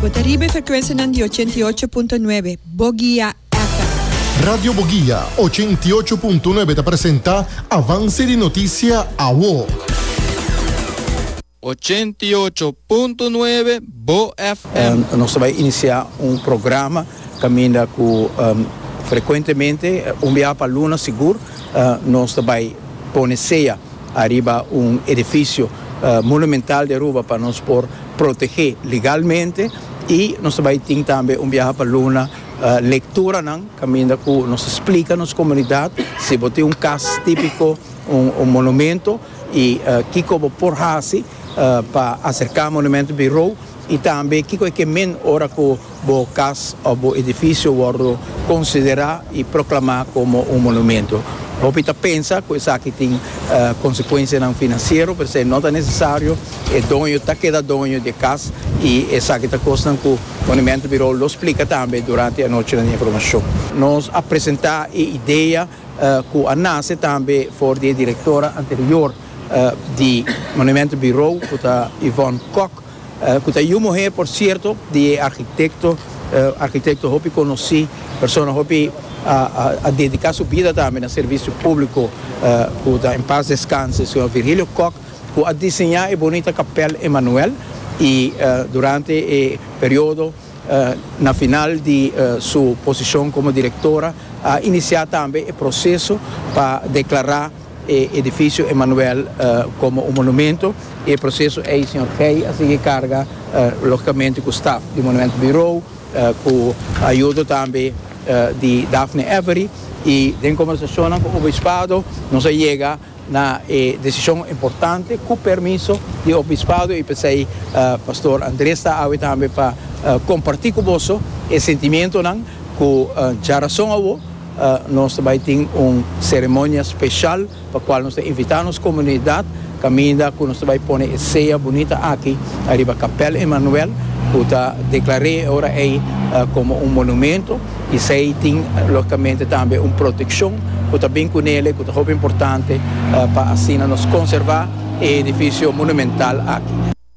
Bo ta riba e frekuensianan di ochenta i ocho punto nuebe Bogia FM. Radio Bogia ochenta i ocho punto nuebe ta presenta Avance di Noticia Awo. Ochenta i ocho punto nuebe Bo FM. Nos ta bai inicia un programa caminda cu frecuentemente un biaha pa luna sigur nos ta bai pone sea. Ariba un edifisio monumental di Aruba pa nos por protegé legalmente i nos ta bai tin tambe un biaha pa Luna lekturanan kaminda ku nos ta splika nos komunidat si bo tin un kas típiko, un monumento i kiko bo por hasi pa aserká monumento birou Y tambe kico e ke men ora cu bo cas of bo edificio wordo considera y proclama como un monumento? Hopi ta pensa cu esaki tin consecuencianan financiero, p'esei no ta necesario. E doño ta keda doño di e cas y esaki ta cosnan cu Monumento Bureau lo splica tambe durante anochinan di informacion. Nos a presenta e idea cu a nace tambe for di e directora anterior. di Monumento Bureau cu ta Yvonne Kok cu ta yu muher por cierto di e architecto, architecto hopi conoci, persona hopi a dedica su bida tambe na servicio publico cu ta en paz descanse Señor Virgilio Kok cu a diseña e bonita Capel Emmanuel y durante e periodo na final di su posicion como directora a inicia tambe e proceso pa declara E edificio Emanuel como un monumento y e proceso ey señor Gey a sigui carga logicamente cu staf di Monumento Bureau cu ayudo tambe di Daphne Avery y den conversacionnan cu Obispado nos a yega na e decision importante cu permiso di Obispado y pesey Pastor Andres ta awe tambe pa comparti cu boso e sentimentonan cu dja rason awo Nos ta bai tin un seremonia special pa cual nos ta invita nos comunidad caminda cu nos ta bai pone e sea bunita aki ariba Capel Emmanuel cu ta declare e ora ey como un monumento y esey tin logicamente tambe un proteccion cu ta bin cu nele cu ta hopi importante pa asina nos conserva e edificio monumental aki.